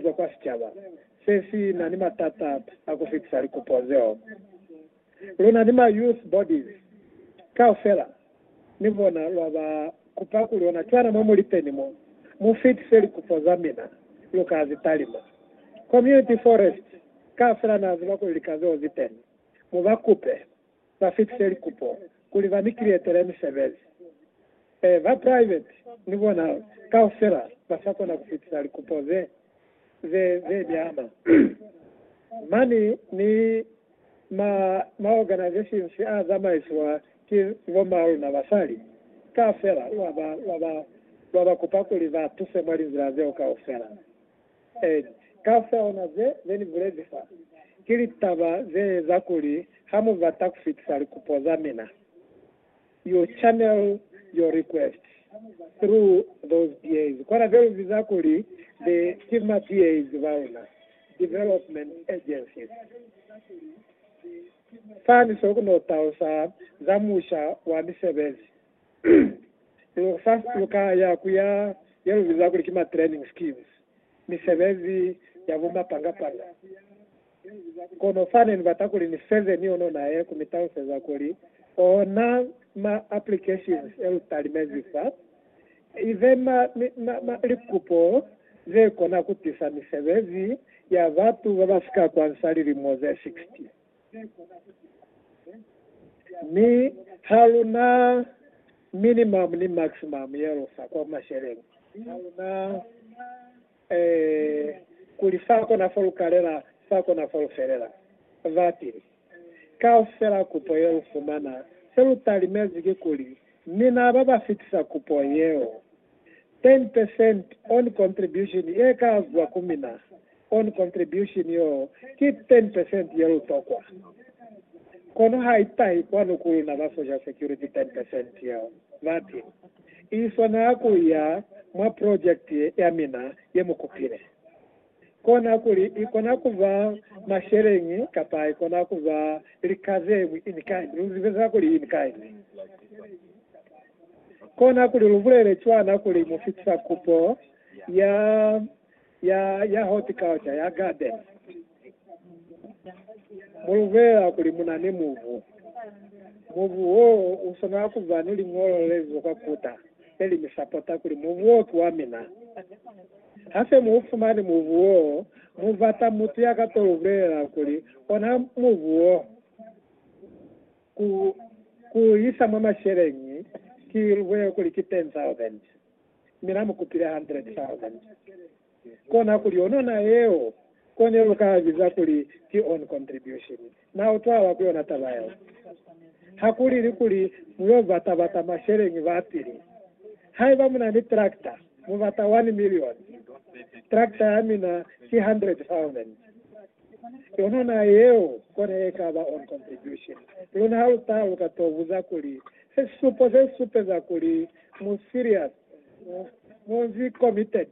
zwa kwa sicaba se si na ni matata a ku fitisa likupo zeo. Lu na ni ma youth bodies kaufela, ni bona lwa ba kupa kuli ona cwana mwa mu li teni mo, mu fitise likupo za mina, lu ka zi talima. Community forest kaufela na ziba kuli lika zeo zi teni, mu ba kupe. ba fitise likupo kuli ba ni kiretele misebezi. Ee, ba private ni bona kaufela ba sa kona ku fitisa likupo ze, ze, ze ni ama. Mani ni ma, ma organizations a zamaisiwa ki bomma luna basali, kaufela wa ba, wa ba, wa ba kupa kuli ba tuse mwa linzila zeo kaufela. Ed. Kaufeona ze ne ni bulezi fa, ki litaba ze eza kuli ha mu bata ku fitisa likupo za mina, you channel your requests through those DAs, kona ze lu biza kuli the ki ma DAs ba luna, Development Agencies. Fani so ku no talusa za musha wa misebezi lu fa lu ka ya ku ya ye lu biza kuli ki ma training schemes, misebezi ya bu mapangapanga. Kono fa ne ni bata kuli ni feze ni yono naye ku mi taluseza kuli ona ma applications e lu talimezi fa, i be ma, ma, ma likupo ze kona ku tisa misebezi ya batu ba ba si ka kwansa lilimo ze 60. Mi ha lu na minimum ni maximum ye lu fa kwa masheleng. Ha lu na eh, kuli fa kona fo lu kalela, fa kona fo lu felela. Ba tili, Kaufela kupo ye lu fumana, se lu talimezi ki kuli mina ba ba fitisa kupo yeo, 10 percent on contribution ye ka zwa ku mina. Kono contribution yoo ki ten percent ye lu tokwa. Kono ha i tahi kwanu ku luna ba social security ten percent yeo, bati, I swanela ku ya mwa project ya mina ye mu kupile. Kona kuli i kona ku ba masheleñi kapa i kona ku ba lika ze ñwi in kind. Lu zibe za kuli in kind? Kona kuli lu bulele cwana kuli mu fitisa kupo ya ya, ya horticulture, ya garden. Mulubela kuli munani mubu. Mubu wo uswanela kuba ni liñolo lelizo kwa kuta, leli mi sapota kuli mubu wo ki wa mina. Hase mu ufumani mubu wo, mu bata mutu ya ka to lubulelela kuli ona mubu wo ku, ku isa mwa masheleñi, ki lubwele kuli ki 10,000. mi na mu kupile hundred thousand. Kona kuli yonona yeo ko ne lu ka biza kuli ki own contribution. Na utwala ku yona taba yeo? Ha ku lili kuli mu yo bata-bata masheleñi ba pili. Haiba mu na ni tractor, mu bata one million. Tractor ya mina ki hundred thousand. Yonona yeo ko ne e ka ba own contribution. Luna ha lu taluka, to buza kuli, Se sisupo se si supeza kuli Mu serious muzi committed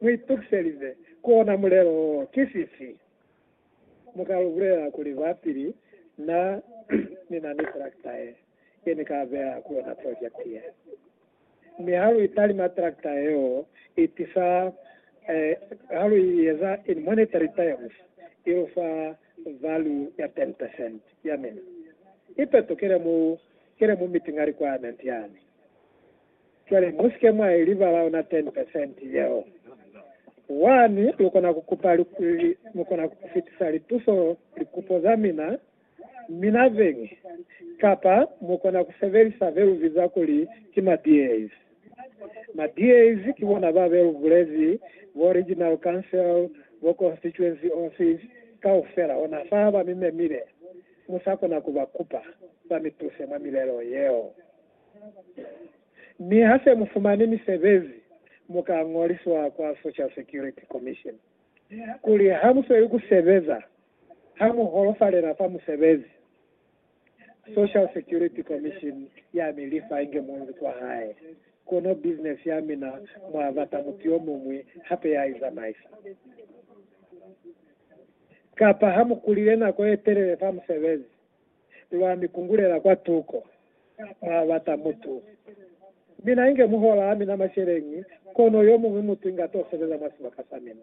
mu itukiselize kuona mulelo wo ki fifi? Mu ka lu bulela kuli kwa pili na ni na ni tractor ye ye ni ka beya ku yona project ye. Mi ha lu italima tractor yeo i tisa eh, ha lu i eza in monetary terms i lu fa value ya 10% ya mina. I petokele mu Kena mu meeting ali kwa Nantiani. Cwale musike mwa i libala ona 10 percent yeo. Wani, lukona ku kupa li, li, mukona ku fitisa lituso, likupo za mina, mina zeñwi, kapa mukona ku sebelisa be lu biza kuli ki ma DAs. Ma DAs ki bona ba be lu bulezi, bo Regional Council, bo Constituency Office, kaufela ona fa ba mi memile. Mu sa kona ku ba kupa ba mi tuse mwa milelo yeo. Mi ha se mu fumani misebezi, mu ka ñoliswa kwa Social Security Commission. Kuli ha mu sweli ku sebeza, ha mu holofalela fa musebezi, Social Security Commission ya mi lifa inge munzi kwa hae. Kono bizinesi ya mina mwa bata mutu yo muñwi hape ya i zamaisa. kapa ha mu kulile nako ye telele fa musebezi, lwa mi kungulela kwa tuko mwa bata mutu. Mina inge muhola a mina masheleñi, kono yo muñwi mutu inga to sebeza mwa sibaka sa mina.